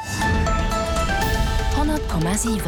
100,7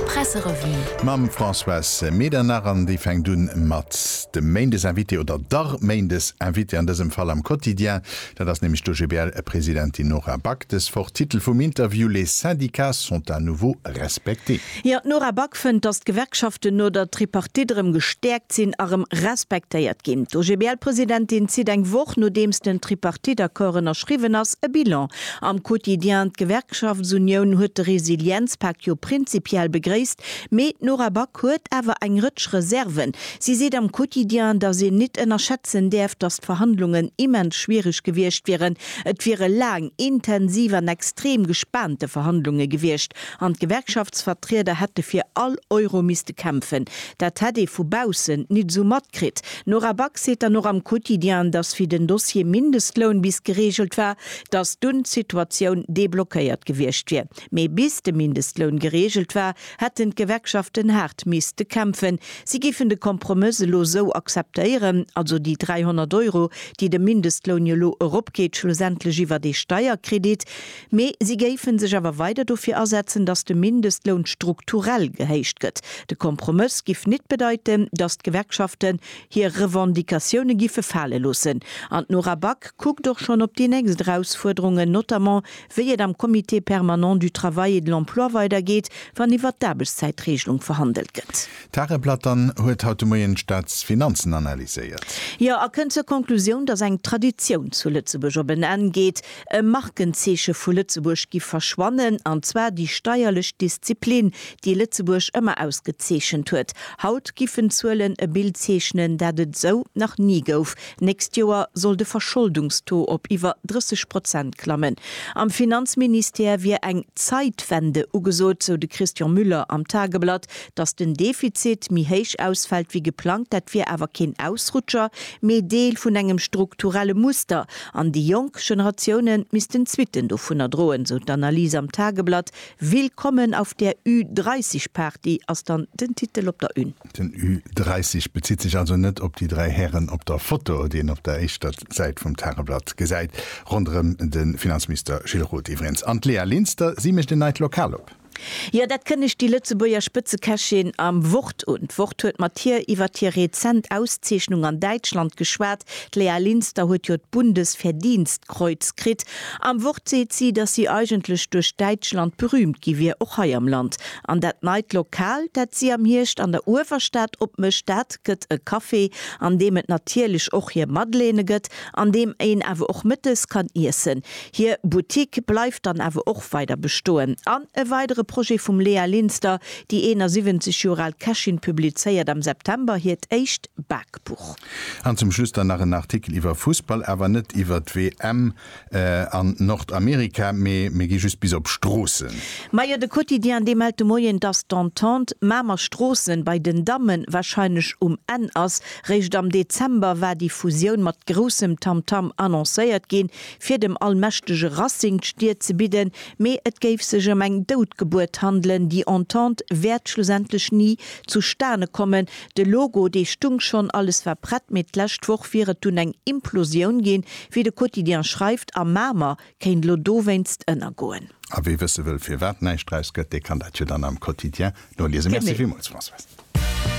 Presserevue. Mam Françoise Medernach an déi fänkt un mat dem Méindesinvité oder der Méindesinvitée an dësem Fall am Quotidien. Dat ass nämlech d'OGBL-Presidentin Nora Back. Dës Woch Titel vum Interview, Les syndicats sont à nouveau respectés. Jo, d'Nora Back fënnt, datt d'Gewerkschaften no der Tripartite erëm gestäerkt sinn a rëm respektéiert ginn. D'OGBL-Presidentin zitt eng Woch nodeems den Tripartite-Accord ënnerschriwwen ass e Bilan. Am Quotidien D'Gewerkschaftsunioun huet de Resilienzpak jo prinzipiell begréisst, mee d'Nora Back huet awer eng Rëtsch Reserven. Si seet am Quotidien, datt een nit ënnerschätzen däerf, datt d'Verhandlungen immens schwiereg gewiescht wieren. Et wiere laang, intensiv an extrem gespaante Verhandlunge gewiescht an d'Gewerkschaftsvertrieder hätte fir all Euro misste kämpfen. Dat hätt ee vu baussen nit esou matkritt. D'Nora Back seet dann och am Quotidien, datt wéi den Dossier Mindestloun bis gereegelt war, datt dunn d'Situatioun deblockéiert gewiescht wier. Mee bis de Mindestloun gereegelt war, hätten d'Gewerkschaften haart misste kämpfen. Si géifen de Kompromëss elo sou akzeptéieren, also déi 300 Euro, déi de Mindestloun jo elo eropgeet, schlussendlech iwwert ee Steierkredit. Mee si géife sech awer weider dofir asetzen, datt de Mindestloun strukturell gehéicht gëtt. De Kompromëss giff nit bedeiten, datt d'Gewerkschaften hir Revendicatioune giffe fale loossen. An d'Nora Back kuckt och schonn op déi nächst Erausfuerderungen, notamment wéi et am Comité permanent du travail et de l'emploi weidergeet, wann iwwert d'Aarbechtszäitreegelung verhandelt gëtt. D'Tare Platon huet haut de Moien d'Staatsfinanzen analyséiert. Jo, a kënnt zur Konklusioun, datt eng Traditioun zu Lëtzebuerg op en Enn geet. E Markenzeeche vu Lëtzebuerg giff verschwannen, an zwar déi steierlech Disziplin, déi Lëtzebuerg ëmmer ausgezeechent huet. Haut giffen d'Zuelen e Bild zeechnen, dat et esou nach ni gouf. Nächst Joer soll de Verscholdungstaux op iwwer 30 Prozent klammen. Am Finanzministère wier eng Zeitwende ugesot, sou de Christian Müller am Tageblatt. Datt den Defizit méi héich ausfält wéi geplangt, dat wier awer keen Ausrutscher, mee Deel vun engem strukturelle Muster. An déi jonk Generatioune missten d'Suitten dovunner droen, esou d'Analys am Tageblatt. Willkommen auf der Ü30 Party ass dann den Titel op der Une. Den Ü30 bezitt sech also net op déi dräi Hären op der Foto, déi een op der éischter Säit vum Tageblatt gesäit, ronderëm de Finanzminister Gilles Roth iwwereens an d'Léa Linster. Si mécht en neit Lokal op. Jo, dat kënnegt déi Lëtzebuerger Spëtzekächin am Wort un. D'Wort huet mat hir iwwert hir rezent Auszeechnung an Däitschland geschwat. D'Lea Linster huet jo d'Bundesverdienstkreuz kritt. Am Wort seet si, datt si eigentlech duerch Däitschland berüümt gi wier, och hei am Land. An dat neit Lokal, dat si am Hierscht an der Uewerstad opmécht, dat gëtt e Café, an deem et natierlech och hir Madeleine gëtt, an deem een awer och mëttes kann iessen. Hir Boutique bleift dann awer och weider bestoen. An e weidere Projet vum Léa Linster, Déi 71 Joer al Kächin publizéiert am September hiert éischt Bakbuch. An zum Schluss dann nach en Artikel iwwer Fussball, awer net iwwer d'WM an Nordamerika, mee mir gi just bis op Stroossen. Majo, de Quotidien, dee mellt de Moien, dass d'Entente Mamer Stroossen bei den Damme warscheinlech um Enn ass. Réischt am Dezember war déi Fusioun mat groussem Tamtam annoncéiert ginn. fir dem allmächtege Racing d'Stier ze bidden, mee et géif sech ëm eng dout Gebuert handelen, déi Entente wäert schlussendlech ni zustane kommen. De Logo, dee stung schonn, alles war prett, mee d'lescht Woch wier et dunn eng Implosioun ginn, wéi de Quotidien schreift, a Mamer kéint elo dowéinst ënnergoen. A wie wësse wëll, firwat näischt draus gëtt, dee kann dat jo dann am Quotidien noliesen. Merci villmools, Françoise.